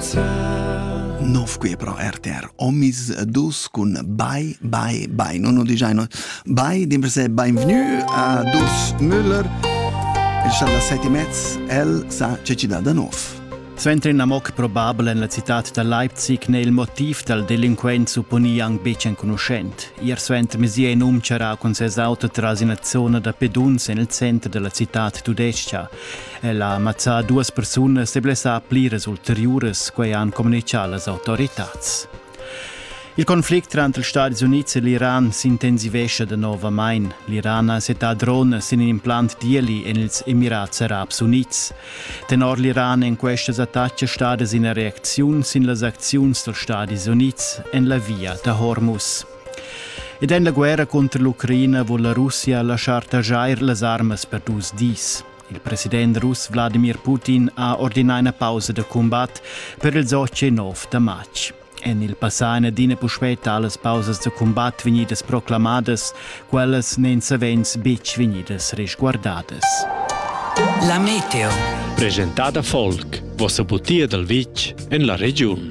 Nov qui pro RTR Omis dus cun Bye Bye Bye non ho digiano Bye dimper se benvenu a dus Müller Inshallah sette mezz el sa cecida da nov Suenter in amoc probabel en la citat da Leipzig n'è il motiv dal delinquent supponì anc betg enconuschent. Ier suenter mesir in um charà cun ses auto tras ina zona da peduns en il center da la citad tudestga. Ella ha mazzà duas persunas e blessà pliras ulteriuras, quai han communitgà las autoritads. Il conflict tranter ils Stati Unids e l'Iran s'intensivescha danovamain. L'Iran ha settà drones sin in implant d'ieli en ils Emirats Arabs Unids. Tenor l'Iran èn questas attacas stadas ina reacziun sin las acziuns dals Stati Unids en la via da Hormuz. Ed en la guerra cunter l'Ucraina vul la Russia laschar taxair las armas per dus dis. Il president russ Wladimir Putin ha ordinà ina pausa da cumbat per ils 8 da matg. En il passà ina adina puspè talas pausas da cumbat vegnidas proclamadas, quellas n'èn savens betg vegnidas resguardadas. La meteo. Presentada folk, vossa butia dal vitg en la regiun.